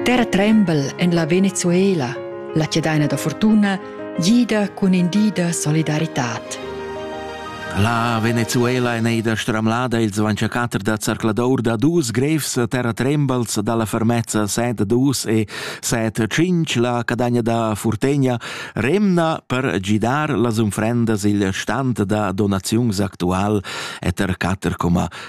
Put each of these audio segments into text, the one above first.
Terra trembel en la Venezuela, la chadaina da fortuna, gida cun in di da solidaritad. La Venezuela è neida stramlada il 24 da zarcladour da dus grevs terra trembals dalla fermezza set dus e set cinc la cadagna da Furtegna remna per gidar las unfrendas il stand da donaziuns actual eter 4,5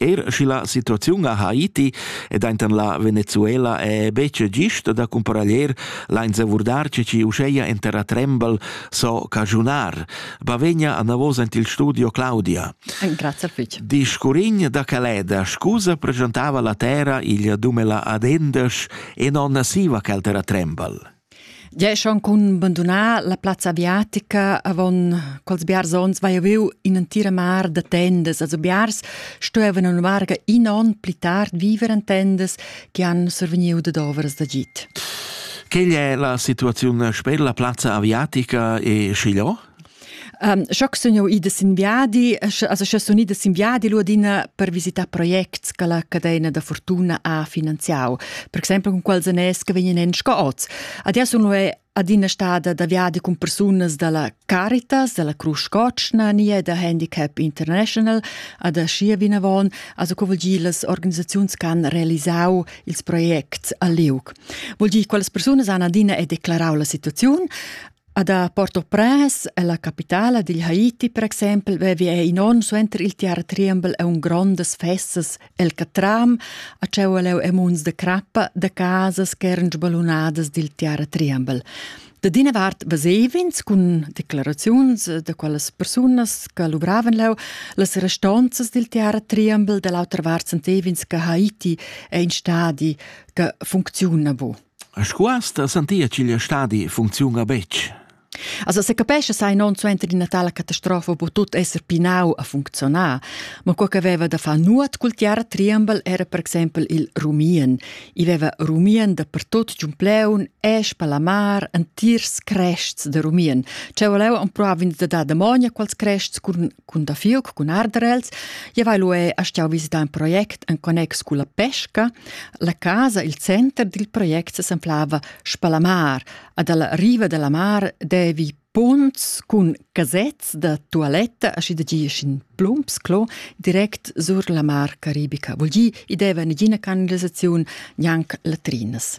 Er schi la situaziun a Haiti ed enten la Venezuela è betg gist da cumparaglier lains avurdar che ci uscheia en terra trembel so cagiunar. Bavegna a navos ent il studio Claudia. Grazie fitch. Di scurign da Caleda scusa presentava la terra igl dumela ad endes e non siva cal terra trembel. Gia schon cun bandunar la plazza aviatica avon quels biars onns vai aveu in'entira mar da tendas, also biars stuevan in varga in onn pli tard viver en tendas che han survegniu dad ovras d'agid. Quella è la situazione sper la plazza aviatica e Chiglò? Um, Schock sun jau ida sin viadi, also sche sun ida sin viadi l'urdina per visitar projects che la cadena da fortuna ha finanziau, per exempel con quels anès che vegnan en sco oz. Adia sun lu adina stada da viadi con persunas dalla Caritas, dalla Cruz Cocna, nie da Handicap International, ad Schier vinavon, also co vuol dir las organisaziuns che han realisau ils projects a Liug. Vuol dir quelles persunas han adina e declarau la situaziun, Ad a Port-au-Prince, ella capitala digl Haiti per exempel, vevi ei in onn suenter il tiara triembel e un grondas festas el catram a tscheu leu e munds de crappa de casas ch'eran sbalunadas dil tiara triembel. Da dina vart vesev'ins cun declaraziuns da quellas persunas che luvravan leu las restonzas dil tiara triembel, dall'autra vart sentev'ins che Haiti è in stadi che funcziuna bu. A Scuas da sentia ch'igl stadi funcziuna betg. Also se capesce sai non suenter d'ina tala catastrofa po tut esser pinau a funzionar, ma quel che aveva da far nuot cul tiara triambel era per exempel il rumien. I aveva rumien da pertot giun pleun e spalamar antirs crests de rumien. Cea voleva ampruavin da dar damonia quals crests cun cun da fiuc cun ardarels, ja vai lué a stiau visità un project en connex con la pesca. La casa, il center dil project s'enflava Spalamar, ad alla riva della mar devi punts cun casets da toaletta aschi da gi in plumps clo direct sur la mar caribica. Vol gi, i deva nagina canalisaziun, gnanc latrinas.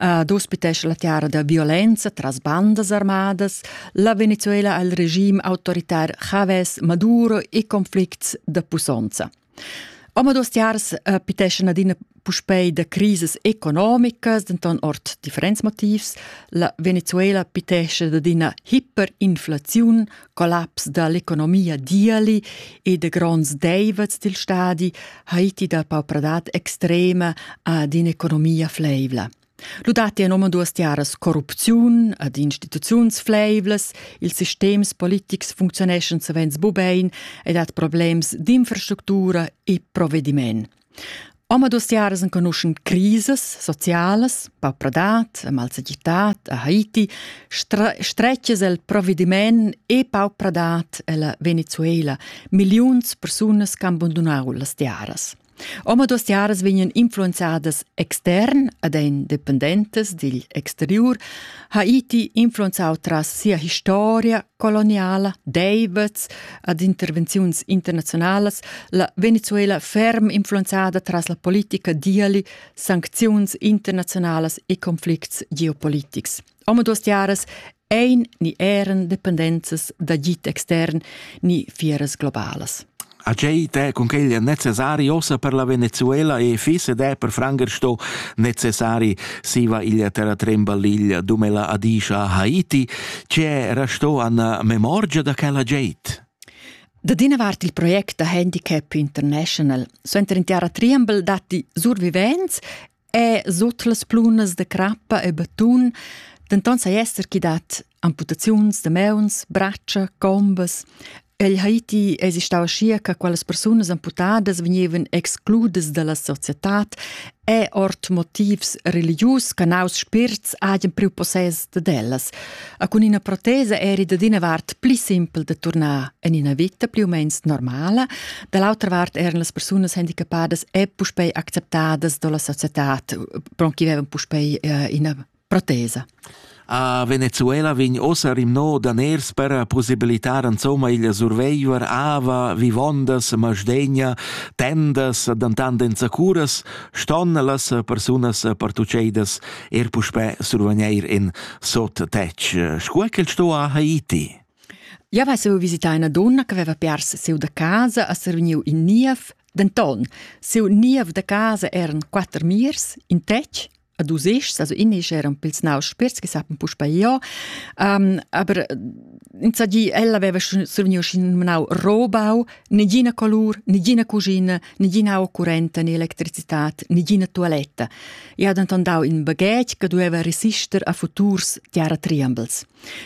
Uh, d'ospitescha la tiara da violenza tras bandas armadas, la Venezuela al regime autoritar Javes, Maduro e conflicts da pusonza. Omados tiars uh, piteschan adina puspei da crisis economicas, denton ord differents motivs. La Venezuela pitesce ad ina hyperinflaziun collaps dall'economia diali e de gronds deivets dil stadi Haiti dal paupradad extrema ad in'economia fleivla. Ludati en omaduas tiaras corrupziun ad instituziuns fleivlas, ils sistems politics funzioneschan savens bubein ed hat problems d'infrastructura e provvediment. Omaduas tiaras enconuschan crisas socialas, paupradad, malsagitad a Haiti, stretgas el provvediment e paupradad ella Venezuela. Milliuns persunas han abandonau las tiaras. Omaduas tiaras vegnan influenzadas extern ad ein dependentes digl exterior. Haiti influenzau tras sia historia coloniala Davids ad intervenziuns internazionalas, la Venezuela ferm influenzada tras la politica diali, sancziuns internazionalas e conflicts geopolitics. Omaduas tiaras ein ni eran dependenzas d'agit extern ni fieras globalas. A tgei te cun quegl è necessari ossa per la Venezuela e fisse de per Franger sto necessari siva iglia terra trembaliglia dumela Adisha a Haiti, c'è resto an memorgia da quella geit? Da d'ina vart il project da handicap international. Suenter in tiara triembel datti survivents è sut las plunas da crappa e betun, denton sai esser chi dat amputaziuns da meuns, braccia, combas. El Haiti esistava scia che quelles persunas amputadas vegnevan excludas dalla societad e ord motivs religius che naus spirts hajan priu possess dad ellas. A cun ina protesa eri dad ina vart pli simpel da turnar en ina vita pli u meins normala, da l'autra vart eran las persunas handicapadas e puspei acceptadas dalla societad, pron chi vevan puspei uh, ina protesa. A Venezuela vegn ossa rimno daners per possibilitar insomma il surveiver ava, vivondas, masdegna, tendas, dantant enzacuras, ston las persunas partuceidas er puspè survegneir in sot tec. Scuol che sto a Haiti? Ja vai seu visitar una donna che aveva perso seu da casa a Serviniu in Niev, denton, seu niev da casa eran quatter mirs, in tec, a dus ischs, also in isch eran pils naus spirts che sapen puspa io, um, aber insaggi ella aveva survegniu scin menau robau, negina colur, negina cugina, nigina occurrenta né electricitat, nigina tualetta. E ha denton dau in baghetg che dueva resister a futurs tiara triambels.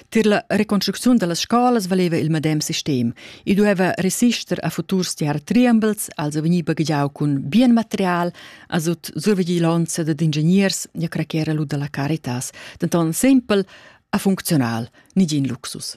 Tir la reconstrucziun dallas scolas valeva il medem sistem. E dueva resister a futurs tiara triambels, also vegni baghegiau cun bien material, a sut survigilonza dad ingegners ja craquera lu dalla caritas. Denton sempel a funzional, nigin luxus.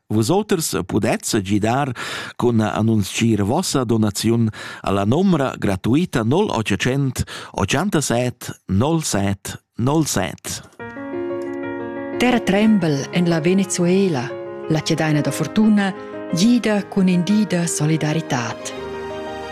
Vusoters pudez gidar cun annunzchir vossa donaziun alla nomra gratuita 0800 87 07 07. Terra tremble en la Venezuela, la cedaina da fortuna, gida cun in di da solidaritat.